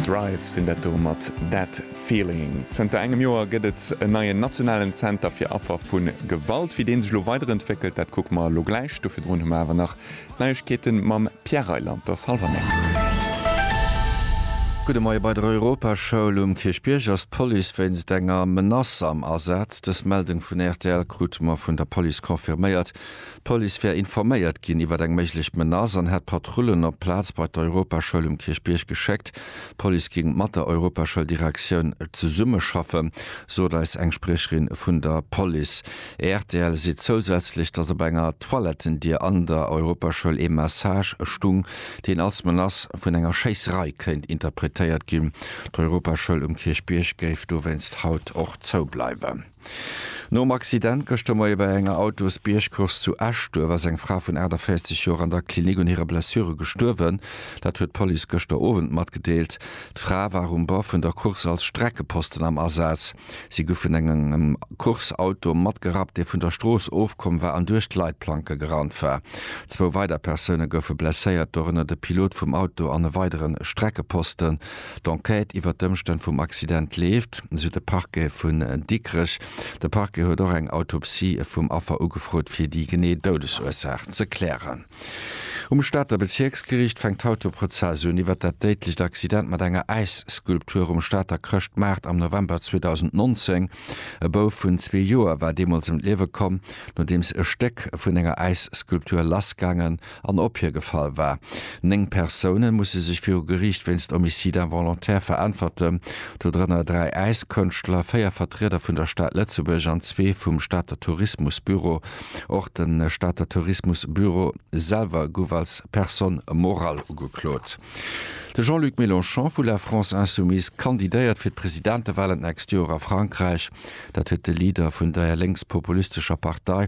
Drive sinn dat do mat That Feeling. Zënter engem Joer gëtt et en neien nationalen Zenter fir Affer vu Gewalt. Wéi deen sech elo weiderentwéckelt, dat kucke mer elo gläich. Do virdrun hu mer awer nach d'Neiegkeete mam Pierre Reyland. T'ass hallwer néng. Gudde Moie. Bei der Europaschoul um Kierchbierg ass d'Police wéinst enger Menace am Asaz. Dës Meldung vun rtl krute mer vun der Police confirméiert. D'Police wär informéiert ginn iwwer eng méiglech Menace an hätt Patrullen op d'Plaz bei d'Europaschoul um Kierchbierg geschéckt. D'Police géing mat der Europaschouldirektioun zesummeschaffen, sot eis eng Spriecherin vun der Police. Rtl seet zousätzlech, datt op enger Toilettendier an der Europaschoul ee Message stung, deen als Menace vun enger Schéisserei kéint interpretéiert ginn. D'Europaschoul um Kierchbierg géif dowéinst haut och zoubleiwen. Nom Accident gëschter Moie bei enger Autosbiergcourse zu Eschduerf ass eng Fra vun 48 Joer an der Klinik un hire Blessure gestuerwen. Dat huet d'Police gëschter Owend matgedeelt. D'Fra war um Bord vun der Course als Streckeposten am Asaz. Si gouf vun engem Course-Auto matgerappt, dee vun der Strooss ofkomm war an duerch d'Leitplanke gerannt war. Zwou weider Persoune goufe blesséiert, dorënner de Pilot vum Auto an e weidere Streckeposten. D'Enquête iwwer d'Ëmstänn vum Accident leeft, sou de Parquet vun Dikrech. De Parquet huet och eng Autopsie vum Affer ugefrot, fir déi genee Doudesursaach ze klären. Um Stater Bezierksgeriicht fänkt haut de Prozess un iwwer dat déidlecht Accident mat enger Äisskulptur um Stater Chrëschtmaart am November 2019. E Bouf vun zwee Joer war deemools ëm d'Liewe komm, nodeems e Stéck vun enger Äisskulptur lassgaangen an opiergefall war. Néng Persoune musse sech viru Geriicht wéinst Homicide involontaire veräntwerten, dodrënner dräi Äiskënschtler, véier Vertrieder vun der Stad Lëtzebuerg an zwee vum Stater Tourismusbüro. Och de Stater Tourismusbüro selwer gouf als personne morale ugeklot. De Jean-Luc Mélenchon vu La France Insoumise kandidéiert fir d'Presidentewahlen d'nächst Joer a Frankräich. Dat huet de Leader vun der lénkspopulistescher Partei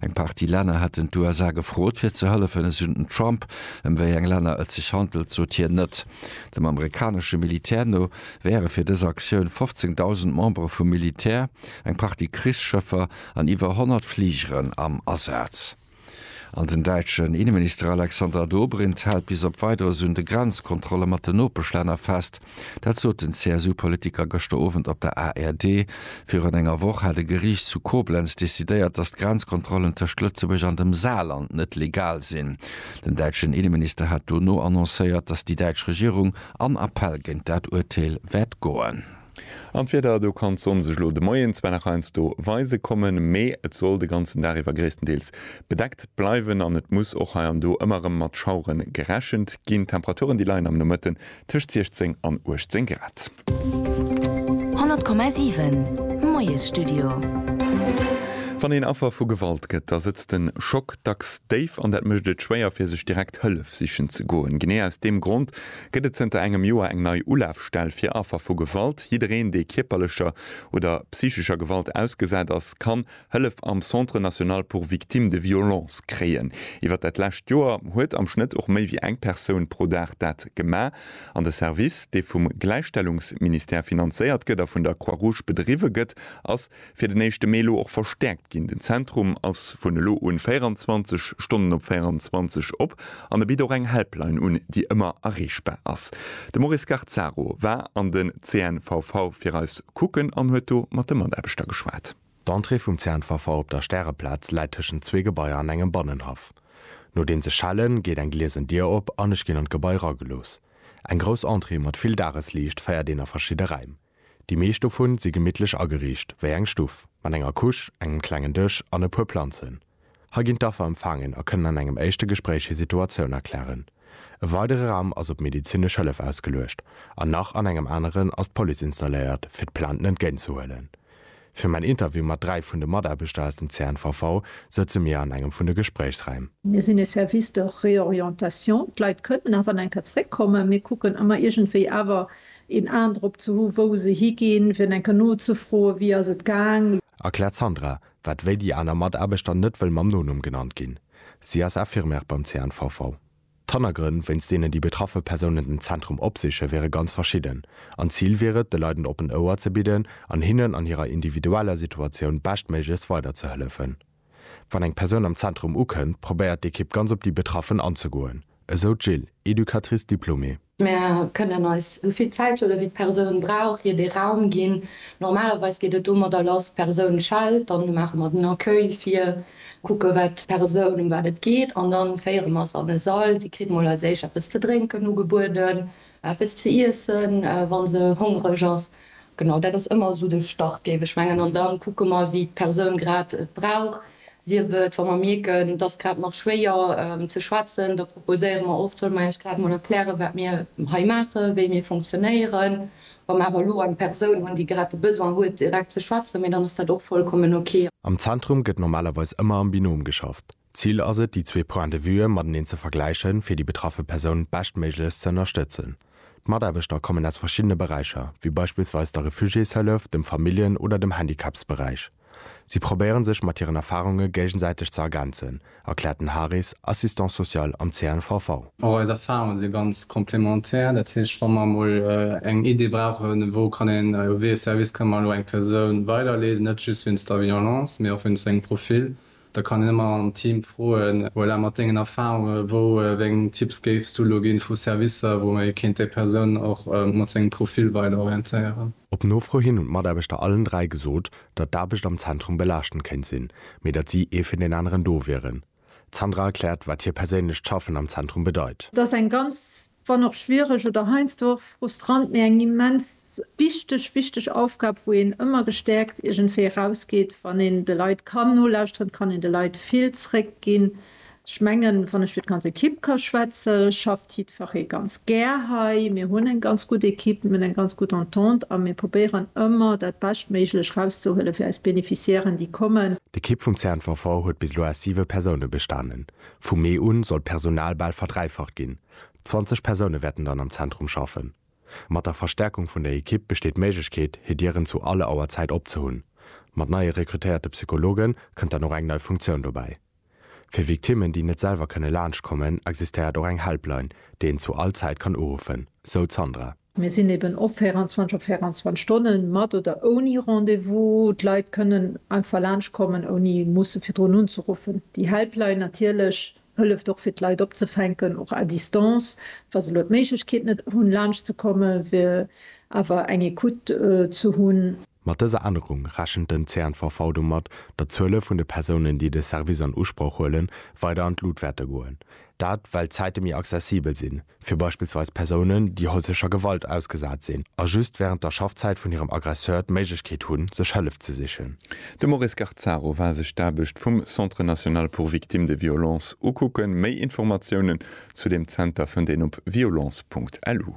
Eng Partie Länner hätten d'USA gefrot, fir ze hëllefen. Esou den Trump. Ëm wéi eng Länner et sech handelt, sot hien net. Dem amerikanesche Militär no wäre fir dës Aktioun 15.000 Membere vum Militär, eng Partie Krichsschëffer an iwwer 100 Fligeren am Asaz. An den däitschen Inneminister Alexander Dobrindt hält bis op Weideres un de Grenzkontrolle mat den Nopeschlänner fest. Dat sot den CSU-Politiker gëschter Owend op der ARD. Virun enger Woch hat e Geriicht zu Koblenz decidéiert, datt d'Grenzkontrollen tëscht Lëtzebuerg an dem Saarland net legal sinn. Den däitschen Inneminister hat dono annoncéiert, datt déi däitsch Regierung an Appell géint dat Urteel wäert goen. An d'Wieder, do kann d'Sonn sech elo de Moien zwar nach heiansdo weise kommen, mee et soll de ganzen Dag iwwer gréisstendeels bedeckt bleiwen an et muss och hei an do ëmmer erëm mat Schauere gerechent ginn. D'Temperaturen, déi leien am Nomëtte Tëscht 16 an 18 Grad. 100,7 Moiesstudio. Wann een Affer vu Gewalt gëtt, da sëtzt den Schock dacks déif an dat mécht et schwéier, fir sech direkt Hëllef sichen ze goen. Genee aus deem Grond gëtt et zënter engem Joer eng nei Ulafstell fir Affer vu Gewalt. Jiddereen, dee kierperlecher oder psychescher Gewalt ausgesat ass, kann Hëllef am Centre National pour Victimes de Violences kréien. Iwwer dat lescht Joer huet am Schnëtt och méi wéi eng Persoun pro Dag dat gemaach. An de Service, dee vum Gläichstellungsministère finanzéiert gëtt a vun der Croix-Rouge bedriwwe gëtt, ass fir den éischte Mee elo och verstäerkt ginn. Den Zentrum ass vun elo un 24 Stonnen op 24 op an e bitt och eng Helpline un, déi ëmmer erreechbar ass. De Maurice Garzaro war an den CNVV fir eis kucken an huet do mat de Mataarbechter geschwat. D'Entrée vum Zäntwerfer op der Stäreplaz läit tëschent zwee Gebaier an engem Bannenhaff. Nodeems ech schellen, geet eng gliesen Dier op an ech ginn an d'Gebai ragelooss. Eng grouss Entrée mat vill Dagesliicht féiert een a verschidde Räim. Déi meescht dovun si gemittlech ageriicht, wéi eng Stuff, mat enger Couche, engem klengen Dësch an e puer Planzen. Hei ginn d'Affer empfaangen a kënnen an engem éischte Gespréich hir Situatioun erklären. E weidere Raum ass op medezinesch Hëllef ausgeluecht an nach an engem aneren ass d'Police installéiert, fir d'Plainten entgéint ze huelen. Fir mäin Interview mat dräi vun de Mataarbechter aus dem CNVV sëtze mir an engem vun de Gespréichsräim. Mir sinn e Service de réorientation, d'Leit kënnen nach an enker zeréckkommen. Mir kucken ëmmer iergendwéi awer een Aen drop ze hu wou se higinn, fir enker nozefroen, wéi ass et gaang. Erkläert d'Sandra, Wat wéi déi aner Mataarbechter net wëll mam Nonumm genannt ginn. Si ass Infirmière beim CNVV. D'Hannergrënn, wéinst deenen déi betraffe Persounen den Zentrum opsichen, wiere ganz verschidden. An d'Zil wier et, de Leit en oppent Ouer ze bidden an hinnen an hirer individueller Situatioun beschtméiglechst weiderzehëllefen. Wann eng Persoun am Zentrum ukënnt, probéiert d'Ekipp ganz op déi Betraffen anzegoen, esou d'Jill, Educatrice diplômée. Mir kënnen eis esou vill Zäithuele wéi d'Persoun brauch, hir dee Raum ginn. Normalerweis geet et domadder lass, d'Persoun schellt, dann maache mer den Accueil vir, kucke wat d'Persoun, ëm wat et geet an da féiere mer se an e Sall. Si kritt mol als éischt eppes ze drénken ugebueden, eppes ze iessen, wa se hongreg ass. Genau, dat ass ëmmer esou de Start, géif ech mengen. An da kucke mer, wéi d'Persoun grad et brauch. Sief et, wa mer mierken, et ass grad nach schwéier ze schwätzen, da proposéiere mer oft, Solle mer iech grad emol erklären, wat mir hei maachen, wéi mir funktionéieren, wa mer awer elo eng Persoun hunn, déi grad de Besoin huet, direkt ze schwätzen, mee dann ass dat och vollkommen ok. Am Zentrum gëtt normalerweis ëmmer am Binom geschafft. D'Zil ass et, déi zwee Points de vue mateneen ze vergläichen, fir déi betraffe Persoun beschtméiglechst ze ënnerstëtzen. D'Mataarbechter kommen aus verschiddene Beräicher, wéi beispillsweis der Refugiéshëllef, dem Familljen oder dem Handicapsberäich. Si probéiere sech mat hiren Erfarunge géigesäiteg ze ergänzen, erkläert den Haris, Assistant social am CNVV. Och eis Erfarunge si ganz complémentaire. Dat heescht, wa mer emol eng Idee brauchen, wou kann een, wéi ee Service kënne mer elo eng Persoun weiderleeden, net just wéinst der Violence, mee och wéinst sengem Profil, Da kann een ëmmer am Team froen, Voilà, mat dengen Erfahrunge wou eng Tipps géifs du elo ginn vu Servicer, wou ee kéint déi Persoun och mat sengem Profil weider orientéieren? Op Nofro hin hunn d'Mataarbechter allen dräi gesot, datt d'Aarbecht am Zentrum belaaschtend kéint sinn, mee datt si ee fir deen aneren do wieren. D'Sandra erkläert, wat hir perséinlecht Schaffen am Zentrum bedeit. Et ass eng ganz wann och schwiereg oder heiansdo och frustrant, mee eng immens wichteg, wichteg Aufgab, wou een ëmmer gestäerkt iergendwéi erausgeet, wann een de Leit kann nolauschteren, kann een de Leit vill zréckginn. Ech mengen, wann ech fir d'ganz Ekipp ka schwätze, schafft jiddferree ganz gär hei. Mir hunn eng ganz gutt Ekipp, mir hunn eng ganz gutt Entente a mir probéieren ëmmer dat Beschtméiglech erauszehuele fir eis Beneficiairen, déi kommen. D'Ekipp vum CNVV huet bis elo aus siwe Persoune bestanen. Vu Mee un soll d'Personal bal verdräifacht ginn, 20 Persoune wäerten dann am Zentrum schaffen. Mat der Verstärkung vun der Ekipp besteet d'Méiglechkeet, hir Dieren zu alle Auer Zäit op ze hunn. Mat neie rekrutéierte Psychologe kënnt dann och eng nei Funktioun dobäi. Fir Victimmen, déi net selwer kënne laanscht kommen, existéiert och eng Helpline, déi een zu all Zäit kann uruffen, sou d'Sandra. Mir sinn eben op 24 op 24 Stonnen, mat oder ouni Rendez-vous. D'Leit kënnen einfach laanschtkommen, ouni musse virdrun unzeruffen. Déi Helpline natierlech hëlleft och, fir d'Leit opzefänken, och à distance. Wa se elo d'Méiglechkeet net hunn, laanschtzekommen, wier awer eng Ecoute ze hunn. Mat dëser Ännerung rechent den CNVV domat, datt d'Zuele vun de Persounen, déi de Service an Usproch huelen, weider an d'Lut wäerte goen. Dat, well d'Zäite méi accessibel sinn, fir beispillsweis Persounen, déi häuslecher Gewalt ausgesat sinn a just wärend der Schaffzäit vun hirem Aggresseur d'Méiglechkeet hunn, sech Hëllef ze sichen. De Maurice Garzaro war sech d'Aarbecht vum Centre national pour victimes de violences ukucken. Méi Informatiounen zu deem Zenter fënnt een op violence.lu.